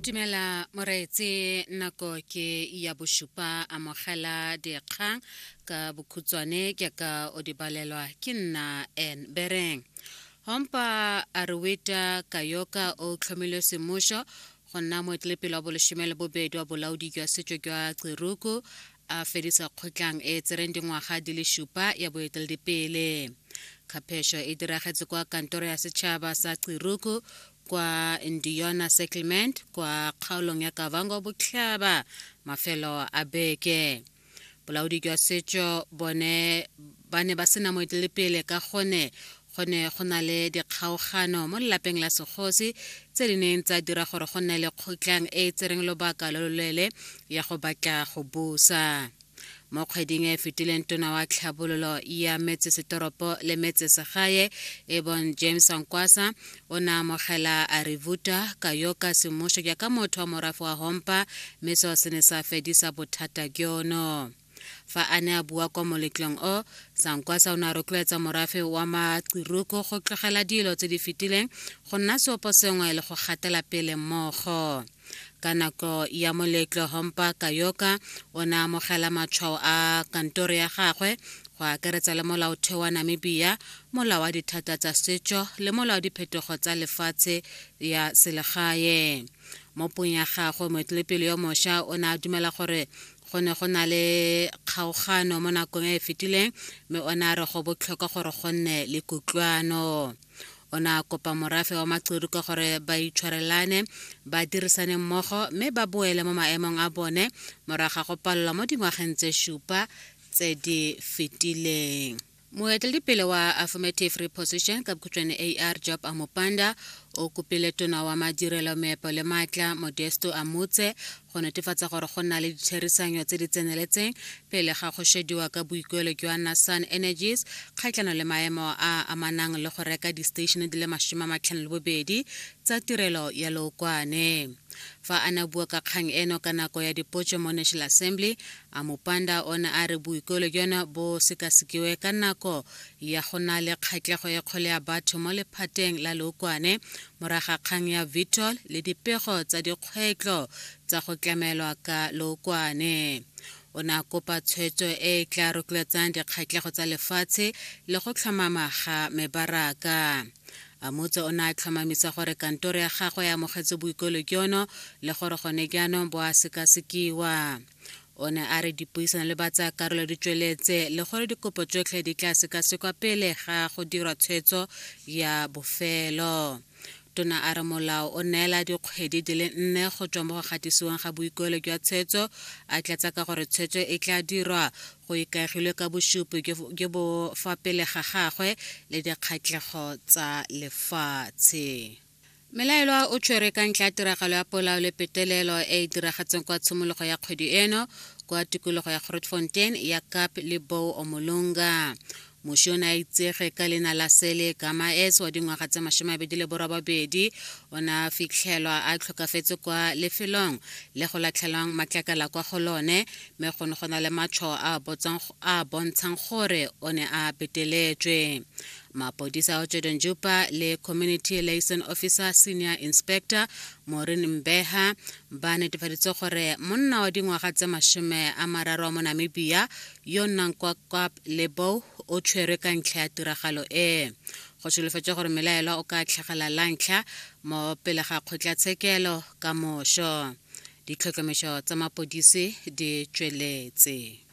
Tumela moreetse nako ke ya bosupa amogela dikgang ka bokhutswane ke ka o di balelwa ke nna en bereng hompa a re weta kayoka o tlhomilwe semmušo go nna moetlelepele wa bolesome le bobedi wa bolaodi jwa setšo jwa tsiruku a fedisa kgotlang e e tsereng dingwaga di le supa ya boeteledipele kgaphesho e diragetse kwa kantoro ya setšhaba sa qiruku kwa ndiona settlement kwa kgaolong ya kavango botlhaba mafelo a beke bolaodi jwa setso bone ba ne ba sena moetelepele ka gone Go ne go na le dikgaogano mo lelapeng la segosi tse di neng tsa dira gore go nne le kgotlang e e tsereng lobaka lo loleele ya go batla go busa. Mo kgweding e e fetileng tona wa tlhabololo ya metsesetoropo le metsesegae e bong James Ankwasa o ne amogela Arivuta Kayoka semmušo jaaka motho wa morafe wa Hompa mme seo se ne sa fedisa bothata jono. Fa a ne a bua kwa moletlong o, Sankwasa o ne a rotloetsa morafe wa Maqiruku go tlogela dilo tse di fetileng, go nna seopo sengwe le go gatela pele mmogo. Ka nako ya moletlo, Hompa Kayoka o ne a amogela matshwao a kantoro ya gagwe, go akaretsa le Molaotheo wa Namibia, Molao wa Dithata tsa Setso le Molao wa Diphetogo tsa Lefatshe ya Selegae. Mo puong ya gagwe, moetelepele yo mosha o ne a dumela gore go ne go na le kgaogano mo nakong e e fetileng mme o ne a re go botlhokwa gore go nne le kutlwano o ne a kopa morafe wa macudu ka gore ba itshwarelane ba dirisane mmogo mme ba boele mo maemong a bone morago ga go palelwa mo dingwageng tse supa tse di fetileng moeteledipele wa affirmative reposition ka bokhutšwane ar job amopanda o kopile tona wa madirelo meepo le maatla modesto a motse go netefatsa gore go nna le ditherisano tse di tseneletseng pele ga go shediwa ka boikuelo jwa nasan energies kgatlhano le maemo a amanang le go reka distatšhene di le masome a matlhano le bobedi tsa tirelo ya lookwane fa a ne bua ka kgang eno ka nako ya dipotso mo national assembly A Mopanda o ne a re boikuelo jono bo sekasekiwe ka nako ya go na le kgatlego e kgolo ya batho mo lephateng la lookwane morago ga kgang ya Vitol le dipego tsa dikgwetlho tsa go tlamelwa ka lookwane. O ne a kopa tshwetso e e tla rotloetsang dikgatlego tsa lefatshe le go tlhomama ga mebaraka. Amutse o ne a tlhomamisa gore kantoro ya gagwe e amogetse boikuelo jono le gore gone jaanong bo a sekasekiwa. o ne a re dipuisano le batsayakarolo di tsweletse le gore dikopo tsotlhe di tla sekasekwa pele ga go dirwa tshwetso ya bofelo tona a re molao o neela dikgwedi di le nne go tswa mo go gatisiwang ga boikuelo jwa tshwetso a tlatsa ka gore tshwetso e tla dirwa go ikaegilwe ka bosupi jo bo fa pele ga gagwe le dikgatlhego tsa lefatshe Melaelwa o tshwere ka ntlha ya tiragalo ya polao le petelelo e e diragatseng kwa tshimologo ya kgwedi eno kwa tikologo ya Grootfontein ya Kap le Bou Omolonga. Moši o ne a itsege ka leina la Sele Gamaes wa dingwaga tse masomabedi le borobabedi o ne a fitlhelwa a tlhokafetse kwa lefelong le go latlhelwang matlakala kwa go lone mme go ne go na le matšho a a bontshang gore o ne a peteletswe. mapodisa ao tšedon jupa le community liaison officer senior inspector morin mbeha ba netefaditse gore monna wa dingwaga tse masome a mararo mo namibia yo nnang kwa kap lebow o tshwerwe ka ntlha ya tiragalo e go solofetse gore melaelwa o ka tlhagela la ntlha mo pele ga kgotlatshekelo ka moso ditlhotlhomišo tsa mapodisi di tšweletse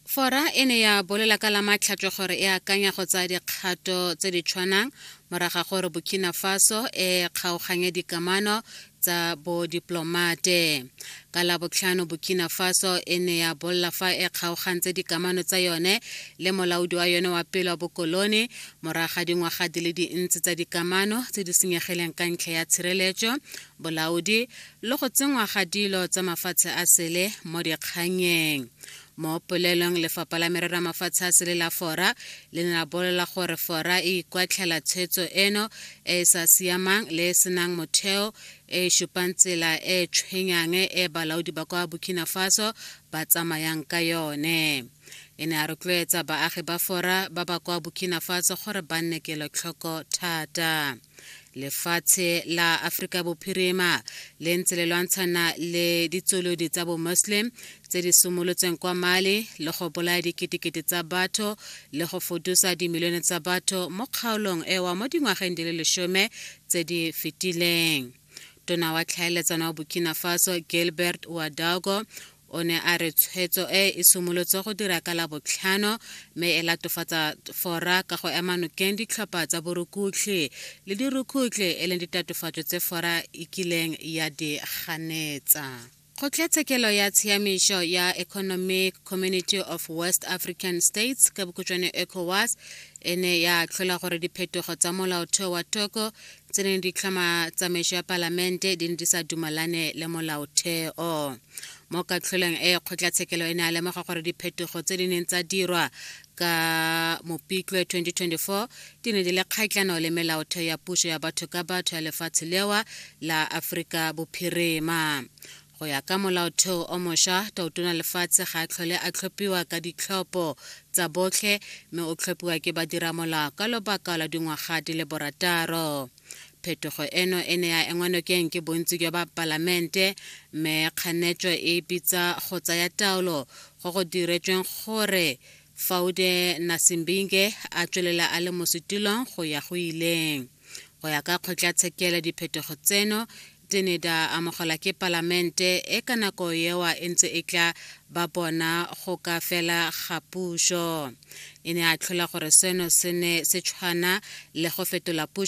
Fora e ne ya bolela ka la matlhatswe gore e akanya go tsaya dikgato tse di tshwanang moraga gore Burkina Faso e kgaoganye dikamano tsa bodiplomate. Ka la botlhano Burkina Faso e ne ya bolla fa e kgaogantse dikamano tsa yone le molaodi wa yone wa pele wa bokolone moraga dingwaga di le dintsi tsa dikamano tse di senyegileng ka ntlha ya tshireletso, bolaodi, le go tsenngwa ga dilo tsa mafatshe a sele mo dikganyeng mo polelong lefapha la merero ya mafatshe a sele la fora le ne la bolela gore fora e ikwatlhela tshwetso eno e e sa siamang le e senang motheo e e supang tsela e e tshwenyang e balaodi ba kwa burkina faso ba tsamayang ka yone e ne a rotloetsa baagi ba fora ba ba kwa burkina faso gore ba nne kelotlhoko thata lefatshe la Afrika Bophirima le ntse le lwantshana le ditsolodi tsa bo-Muslim tse di simolotseng kwa Mali le go bolaya diketekete tsa batho le go fodusa dimilione tsa batho mo kgaolong ewa mo dingwageng di le lesome tse di fetileng. Tona wa tlhaeletsano wa Burkina Faso Gilbert Ouedraogo O ne a re tshwetso e e simolotse go dira ka la botlhano mme e latofatsa fora ka go ema nokeng ditlhopha tsa borukutlhi le dirukhutlhi e leng ditatofatso tse fora e kileng ya di ganetsa. Kgotlatshekelo ya Tshiamišo ya Economic Community of West African States ka bokhutswane ECOWAS e ne ya tlhola gore diphetogo tsa molaotheo wa Togo tse neng di tlhama tsamaiso ya palamente di ne di sa dumalane le molaotheo mo katlholeng e kgotlatshekelo e ne a lemoga gore diphetogo tse di neng tsa dirwa ka mopitlwe 2024 di ne di le kgatlhano le melaotheo ya puso ya batho ka batho ya lefatshe lewa la aforika bophirima go ya ka molaotheo o mošwa tautona lefatshe ga a tlhole a tlhophiwa ka ditlhopho tsa botlhe mme o tlhophiwa ke badiramolao ka lobaka la dingwaga di le borataro phetogo eno e ne ya engwa nokeng ke bontsi jwa ba palamente mme kganetso e bitsa go tsaya taolo go go diretsweng gore faude nasimbinge a tswelela a le mo setulong go ya go ileng go ya ka kgotlatshekelo diphetogo tseno Tseneda amogelwa ke Palamente e ka nako ewa e ntse e tla ba bona go ka fela ga puso. E ne a tlhola gore seno se ne se tshwana le go fetola puso